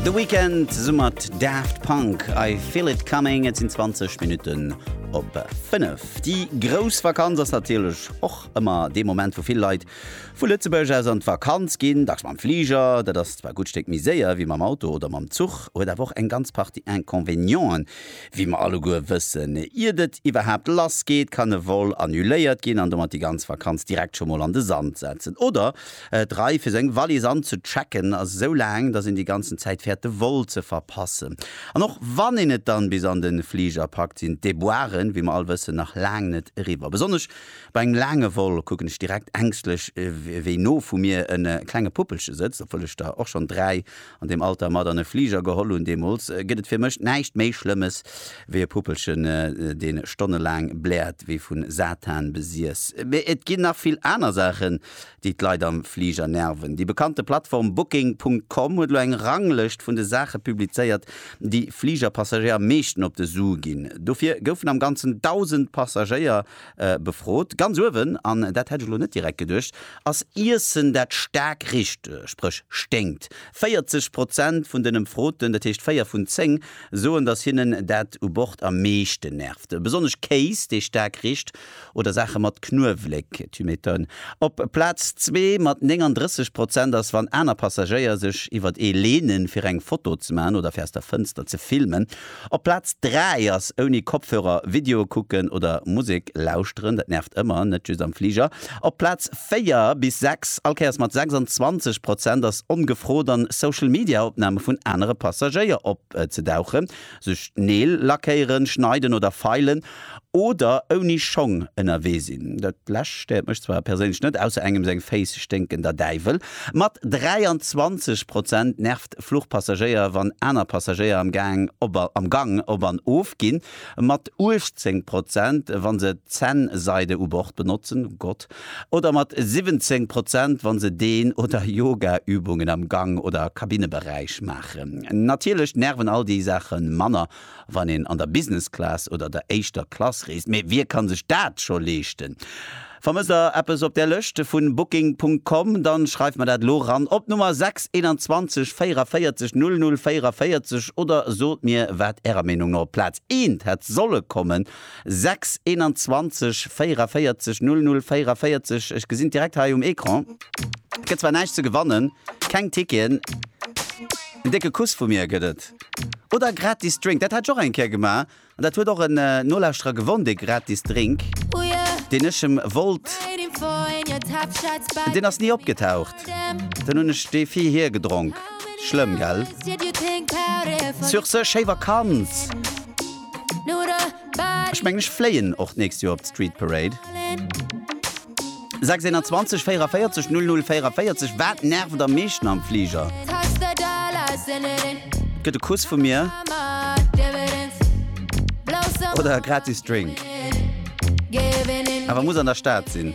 The Weekend summert Daft Punk I feel it coming et sinn 20 Minuten op 5. Déi grouss Vakanz ass natierlech och ëmmer dee Moment, wou vill Leit vu Lëtzebuerg aus an d'Vakanz ginn, dacks mam Fliger. Dat ass zwar e gutt Stéck méi séier wéi mam Auto oder mam Zuch, huet awer och eng ganz Partie Inconvenienten, wéi mer alleguer wëssen. Iert et iwwerhaapt lass geet, kann e Vol annuléiert ginn an domat déi ganz Vakanz direkt scho mol an de Sand setzen. Oder D'Rei fir seng Wallis anzechecken ass esou laang, dass een déi ganzen Zäit fäert de Vol ze verpassen. An och wann een et dann bis an de Fliger packt, sinn d'Déboiren, wéi mer all wëssen, nach laang net eriwwer. Besonnesch bei engem laange Vol kucken ech direkt ängschtlech wéi no vu mir e klenge Puppelche sëtzt. Obwuel ech der och schonn dräi an deem Alter mat an e Fliger geholl hunn, deemools, gëtt et fir mech näischt méi Schlëmmes wéi e Puppelchen, dee stonnelaang bläert wéi vu Satan besiess. Mee et ginn nach vill aner Saachen, déi d'Leit am Fliger nerven. Déi bekannte Plattform Booking Punkt Com huet elo eng Ranglëscht vun de Saache publizéiert, déi Fligerpassagéier am meeschten op de Su ginn. Dofir goufen am Ganzen 1.000 Passagéier befrot. Ganz uewen, an dat hätt ech elo net direkt geduecht, ass Iessen, dat staark richt, spréch sténkt. 40 Prozent vun den Ëmfroten, dat heescht 4 vun 10, soen, datt hinnen dat u Bord am meeschten nervt. Besonnesch Kéis, dee staark richt. Oder Saache mat Knuewléck, tu m'étonnes. Op Plaz zwee mat 39 Prozent ass, wann aner Passagéier sech iwwert ee leene fir eng Foto ze maachen oder fir aus der Fënster ze filmen. Op Plaz dräi ass ouni Kopfhörer Videoe kucken oder Musek lauschteren, dat nervt ëmmer, net just am Fliger. Op Plaz véier bis sechs, all Kéiers mat 26 Prozent, ass ongefrot an Social-Media-Opname vun anere Passagéier opzedauchen. sech d'Neel lackéieren, schneiden oder feilen oder ouni Schong ënnerwee sinn, dat lescht stéiert mech zwar perséinlech net, ausser engem seng Féiss sténken der Däiwel. Mat 23 Prozent nervt Fluchpassagéier, wann aner Passagéier am Gang op an of ginn. Mat 18 Prozent, wa se d'Zännseide u Bord benotzen. Gott. Oder mat 17 Prozent, wa se Dehn oder Yogaübungen am Gang oder Kabinneberäich maachen. Natierlech nerven all déi Saache manner, wann een an der Business Class oder der éischter Klass reest. Mee wie ka sech dat scho leeschten? Vermësst der eppes op där Lëscht vu Booking Punkt Com? Dann schreift mer dat elo ran op d'Nummer 6 21 44 00 44 oder sot mir, wat Ärer Meenung no op Plaz eent hätt solle kommen. 6 21 44 00 44, ech gesinn direkt hei um Ecran, gëtt zwar näischt ze gewannen, keng Ticketen, en décke Kuss vu mir gëtt et oder e gratis Drink, dat hat ech och eng Kéier gemaach an dat huet och en Nolauschterer gewonn, dee gratis Drink, deen ech em wollt, deen ass ni opgetaucht, dann hunn ech dee vir hie gedronk, schlëmm, gell? Sur ce, schéi Vakanz! Ech mengen ech fléien och d'nächst Joer op d'Street Parade. 621 44 00 44 Wat nervt am meeschten am Fliger? Gëtt e Kuss vu mir oder e gratis Drink? Awer muss an der Stad sinn.